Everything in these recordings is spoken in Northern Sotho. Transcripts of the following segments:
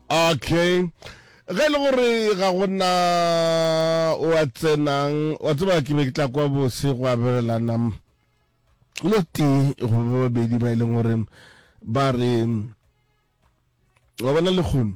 okay ge e le gore ga gona o a tsenang wa tseba ke be ke tla kwa bose go abelelana lo tee go ba babedi ba e leng gore ba re wa bona lekgono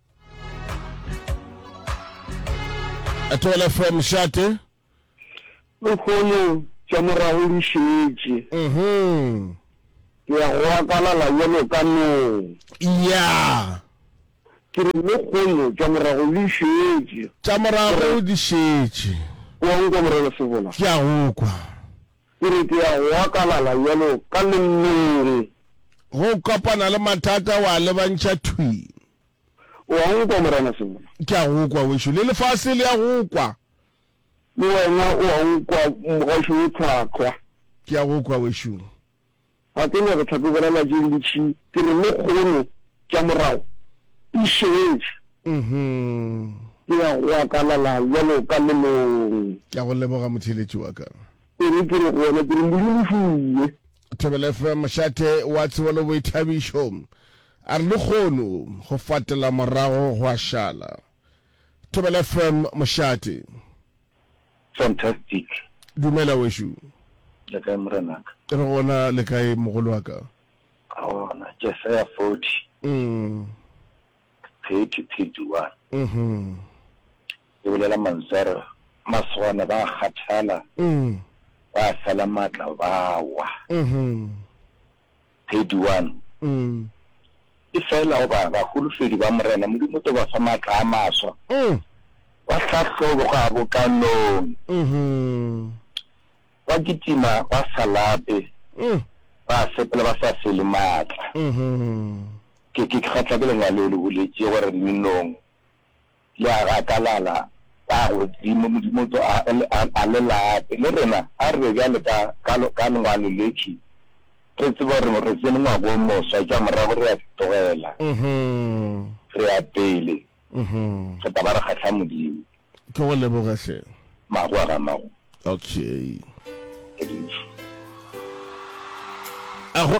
Etoile FM Šate. Lehono tša morago di šetše. Mhm. Ke ya go akalala yelo ka nong. Ya. Ke re lehono tša morago di šetše. Tša morago di šetše. Ke wa nkwa morena Sebola. Ke a go kwa. Ke re ke ya go akalala bjalo ka lennogi. Ge o kopana le mathata o a lebantšha thwi. O a nkwa Morena Sengwela. Ke a go kwa wešo. Le lefase le a go kwa. Le wena o a nkwa Mogašo wo tlhwahlwa. Ke a go kwa wešo. Ga ke nyake tlhakobela la je le tšhi. Ke re lekgono tša morago e šetše. Ke ya go akalala bjalo ka lelong. Ke a go leboga motheeletši wa ka. E re ke re go wena ke re leru le šwile. Thobela FM Mošate wa Tshobolo Boithabišo a re lekgono go fatela morago go a šala. Thobela FM Mošate. Fantastic. Dumela wešo. Le kae morenaka? Re gona le kae mogolo wa ka? Gona Jesaya 40. Mm. 30 31. Mhm. E bolela mantswe a re masogana ba kgathala. Mm. Ba fela matla ba wa. Mhm. Thedi one, ke fela goba baholofedi ba Morena Modimo o tlo ba fa matla a maswa, ba hlahlobo kgabokanong, ba kitima ba sa lape, ba sepela ba sa fele matla. Ke kgatlha ke lengwalo le le boletše gore le nong. Le a gakalala ka godimo, Modimo tso a, a, a le late. Le rena a re be bjale ka, ka, ka lengwalo letše, re tseba gore re tsene ngwaga wo moswa, tša morago re a di tlogela, re ya pele, re tla ba re kgahla Modimo. Ke go leboge hle. Magoa ga magoa. Okay. Ke dutše. A go.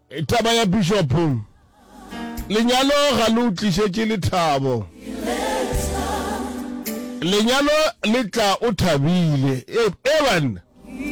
Taba ya Bishop, Lenyalo ga le o tlišetše lethabo. Lenyalo le tla o thabile. Ee banna.